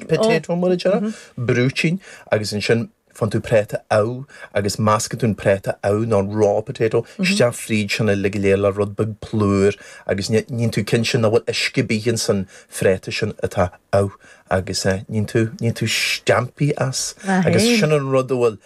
potato mar a déarfá, brúitín agus ansin faigheann tú práta amh agus meascann tú an práta amh nó an raw potato isteach fríd sin uilig go léir le rud beag plúr agus níonn tú cinnte nach bhfuil uisce ar bith in san phráta sin atá amh agus níonn tú, níonn tú steaimpí as agus sin an rud a bhfuil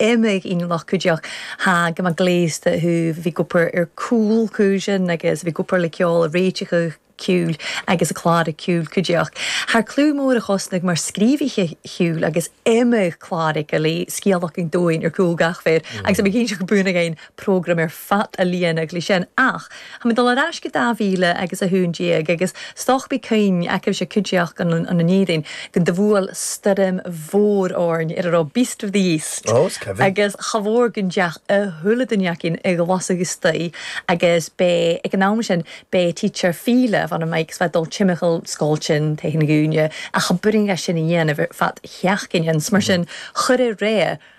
imigh i ngloc go deoc. Tá go mba gléasta thú, bhí go pur ar cúl cu sin agus bhí go pur le ceol a réiteacha ciúil agus a clára ciúil cu deoc. Thar clú mór a chosnaigh mar scríobhaithe ciúil agus imigh clára go léir scéal againn dúinn ar cúl gach fir agus imigh cinnte go buan againn. program ar fad a líonadh leis sin ach táim ag dul ar ais go dá mhíle agus a haon déag agus stochtaí cinn aicimhse cuideachta an an an Éirinn go do bhuail stoirm mhór orainn ar a raibh Beast of the East agus cha mhór go ndeach a thuilleadh duine againn i gclasach istoíche agus bé ag an am sin bé teacher file bhan a Mike is bheith dul timcheall scoil tinn tae na gcúinne ach cha b'fhirinn leis sin a dhéanamh ar fad sheach gcinn ins mar sin chuir a réidh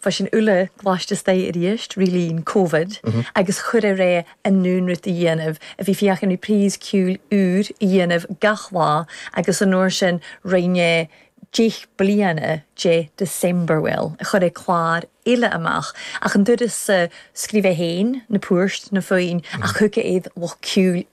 freisin Úlla Glais de Staic arís, Rílín, Covid, agus chuir ar é a naonrút a dhéanamh, a bhí féachaint ar Pries, Ciúil, Iúir, a dhéanamh gach lá agus an uair sin roinn é deich bliana de Decemberwill, a chuir é clár eile amach, ach an turas sa, scríobh é féin na poirt, na foinn, ach thug é iad lucht Ciúil,